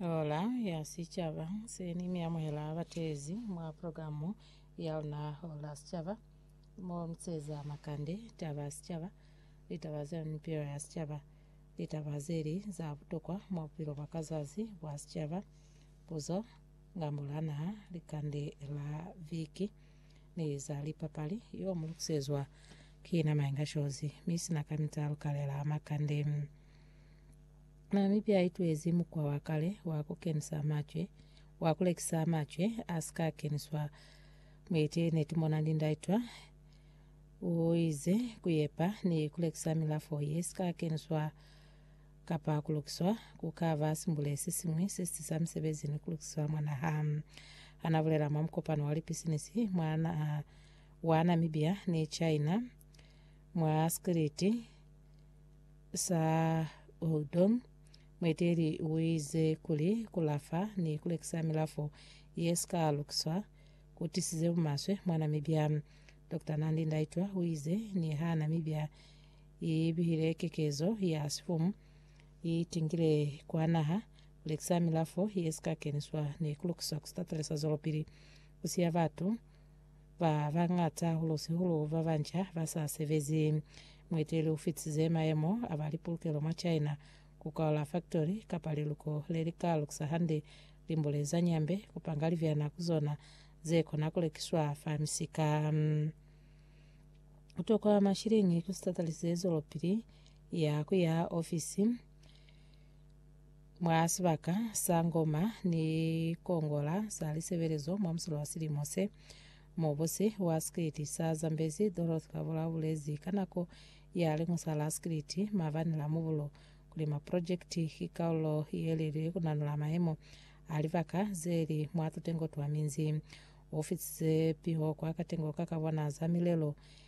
Ola ya Sicaba seni mi amuhela batezi mwa programu ya luna Ola Sicaba mo miseza makande, taba sicaba, litaba za mipilo ya sicaba, litaba zeli za butokwa mwa bupilo bwa ka zazi bwa sicaba, puzo, ngambo la naha, likande la viki ni za lipapali. Yo mu lukusezwa ki na Maenga Shozi mi sina kamita lukalela makande. Namibia i tulezi mukwa wa kale wa ku kenisa macwe, wa ku lekisa macwe a si ka keniswa mwa ite ne tumona lindaitwa. U ize, Ku yepa ni ku lekisa milafo ye si ka keniswa kapa ku lukiswa, ku ka ba simbule se siñwi se si tisa misebezi ni ku lukiswa mwa naha. Ha na bulela mwa mukopano wa lipisinisi mwa naha wa Namibia ni China mwa Sikiliti, sa Uldum, mueteeli uize kuli kulafa ni kulekisa milafo yesika lukiswa kutisize bumaswe mwa Namibia. Doctor Nandi Ndaitwah uize niha Namibia ibihile kekezo ya sifumu, itingile kwa naha kulekisa milafo yesika keniswa ni kulukiswa kusita talisa zwelopili kusiya batu ba bañata, hahulu-sihulu ba banca ba sa sebezi. Mueteli u fitize mayemo a ba lipolokelo mwa China ku kaula faktori kapa liluko le li ka lukisa hande limbule za nyambe ku panga libyana ku zona ze kona ku lekiswa fa misika. Ku tokwa mashiliñi ku si tatalisize zwelopili ya ku yaha ofisi. Mwa sibaka sa Ngoma ni Kongola sa Lisebelezo mwa musolo wa silimo se, mubusi wa sikiliti sa Zambezi, Dorothy Kabula ubulezi ka nako ya liñusa la sikiliti mabani la mubulo kuli maprojekiti ki kaulo yelelile kunanula mayemo a libaka zeli mwa tutengo twa minzi. Ufisize piho kwa katengo ka kabona za milelo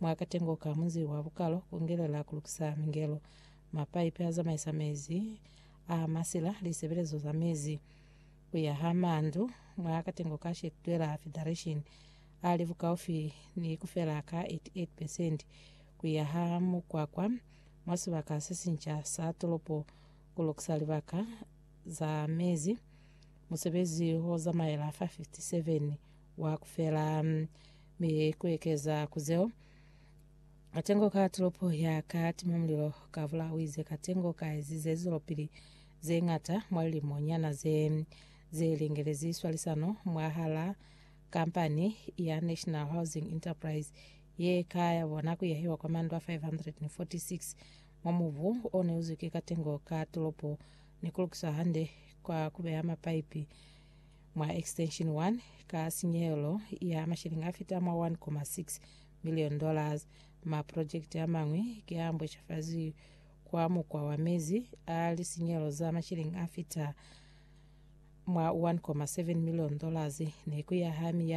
Mwa katengo ka munzi wa bukalo ku ngelela ku lukisa mingelo, mapaipi a zamaisa mezi a masila, lisebelezo za mezi, ku yaha mandu mwa katengo ka Shetwela Federation a li bukaufi ni ku fela ka 88 percent, ku yaha mukwakwa mwa sibaka se sinca sa tolopo, ku lukisa libaka za mezi, musebezi o zamaela fa 57 wa ku fela, mi ku ekeza ku zeo. Katengo ka tulopo ya ka tima mulilo ka bula uize katengo ka ezize lizwelopili ze ngata mwa lilimo nyana ze ze lingelezi swalisano mwa hala kampani ya National Housing Enterprise ye ka ya bona ku yahiwa kwa mandu a 546 mwa mubu o ne uzwi ki katengo ka tulopo ni ku lukiswa hande kwa ku beha mapaipi mwa Extension 1 ka sinyehelo ya mashilingi a fita mwa 1.6 million dollars. Maprojekiti a mañwi ki a mbweshafazi kwa mukwa wa mezi a lisinyehelo za mashilingi a fita mwa 1.7 million dollars ne ku ya ha miyaho